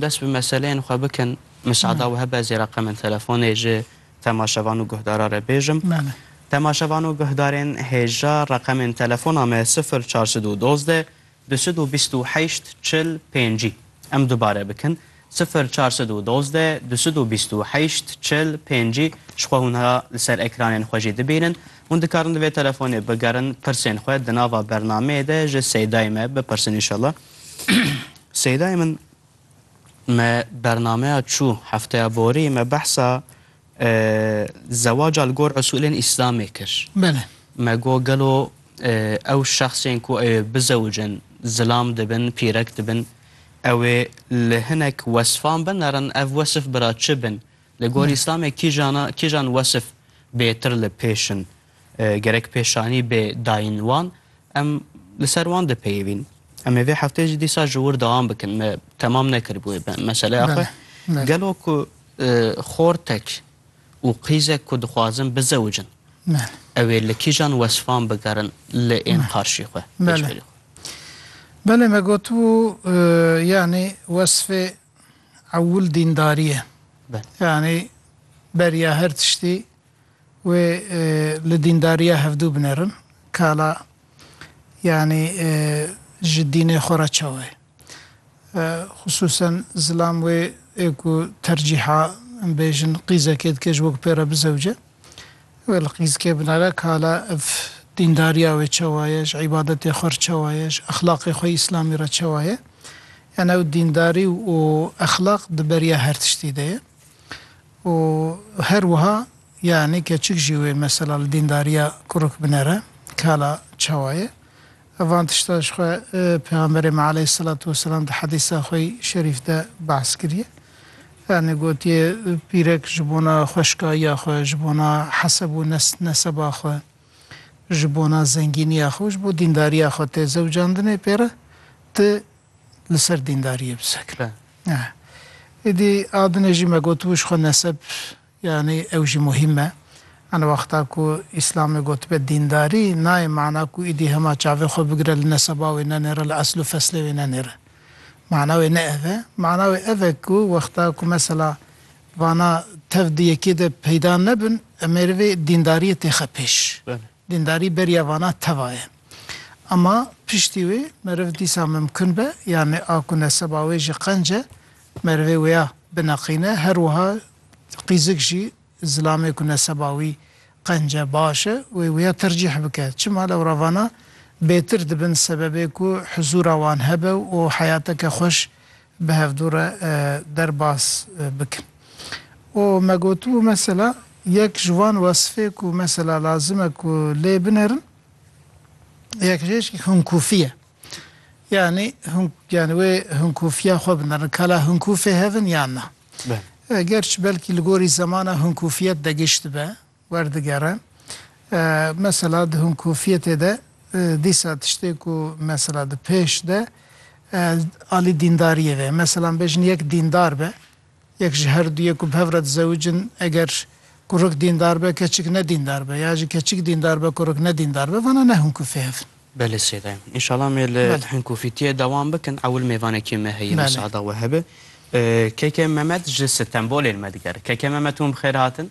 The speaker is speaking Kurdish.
Dest bi meseleyên xwe bikin. Misada we hebe ez ê reqemên telefonê ji temaşevan û guhdaran re bêjim. Temaşevan û guhdarên hêja reqemên telefona me sifir çar sed û dozdeh du sed û bîst û heşt çil pênc î. Em dubare bikin, sifir çar sed û dozdeh du sed û bîst û heşt çil pênc î. Ji xwe hûn ha li ser ekranên xwe jî dibînin. Hûn dikarin di vê telefonê bigerin pirsên xwe di nava bernameyê de ji Seydayê me bipirsin înşallah. Seydayê min. Me bernameya çû hefteya borî me behsa zewaca li gor usûlên îslamê kir. Bele. Me got gelo ew şexsên ku ewê bizewicin zilam dibin, pîrek dibin, ewê li hinek wesfan binerin, ev wesf bira çi bin? Li gor îslamê kîjana kîjan wesf bêtir li pêş in? Gerek pêşanî bê dayîn wan, em li ser wan dipeyivîn. Em ê vê hefteyê jî dîsa ji wir dewam bikin. Me temam nekiribûye meseleya xwe. Gelo ku xortek û qîzek ku dixwazin bizewicin, ew ê li kîjan wesfan bigerin li ên qarşî xwe, pêşberî xwe? Belê me gotibû yanî wesfê ewil dîndarî ye. Yanî beriya her tiştî. Wê li dîndariya hevdû binerin. Kala yanî ji dînê xwe re çawa ye? Xisûsen zilam wê ê ku tercîha bêjin qîzekê dike ji we ku pê re bizewce. Wê li qîzkê binere kala ev dîndariya wê çawa ye, ji îbadetê xwe re çawa ye, ji exlaqê xwe îslamî re çawa ye. Yanî ew dîndarî û exlaq di beriya her tiştî de ye. Û her wiha yanî keçik jî wê mesela li dîndariya kuruk binere ke hala çawa ye. Ev van tişta ji xwe Pêxemberê me aleyhîsselatu weselam di hedîsa xwe yî şerîf de behs kiriye. Yanî gotiye pîrek ji bona xweşkayiya xwe, ji bona heseb û neseba xwe, ji bona zengîniya xwe û ji bo dîndariya xwe tê zewcandinê pê re ti li ser dîndariyê bi sekin. Êdî a dinê jî me gotibû ji xwe neseb yanî ew jî muhîm e. Ana wexta ku Îslamê gotibe dîndarî nayê mana ku êdî hema çavê xwe bigire li neseba wê nenêre, li esl û feslê wê nenêre. Mana wê ne ev e. Mana wê ev e ku wexta ku mesela vana tev di yekê de peyda nebin em ê rivê dîndariyê têxe pêş. Dîndarî beriya vana teva ye. Ama piştî wê meriv dîsa mimkun be, yanê a ku neseba wê ji qenc e, merivê wêya bineqîne, her wiha qîzik jî zilamê ku neseba wî qenc e, baş e, wê wêya tercîh bike. Çima lewravana bêtir dibin sebebê ku huzûra wan hebe û heyateke xweş bi hevdû re derbas bikin. Û me gotibû mesela yek ji wan wesfê ku mesela lazim e ku lê binerin, Yekjêşik hunkûfî ye. Yanî hunk yanî wê hunkûfiya xwe binirin. Ka la hunkûfê hev in yan na. Belê. Gerçi belkî li gorî zemana hunkûfiyet de giş dibe, werdigere. Mesela di hunkûfiyetê de dîsa tiştê ku mesela di pêş de alî dîndariyê ve ye. Mesela em bêjin yek dîndar be. Yek ji her duyê ku bi hev re dizewicin eger kurik dîndar be, keçik ne dîndar be ya jî keçik dîndar be, kurik ne dîndar be vana ne hûn kufê hev in. Belê sêde ye. Înşallah em ê li Belê. hinkufîtiyê dewam bikin. Ewil mêvanekê me heye Belê. misada we hebe. Keke Memed ji Stenbolê li me digere. Keke Memed hûn bi xêr hatin.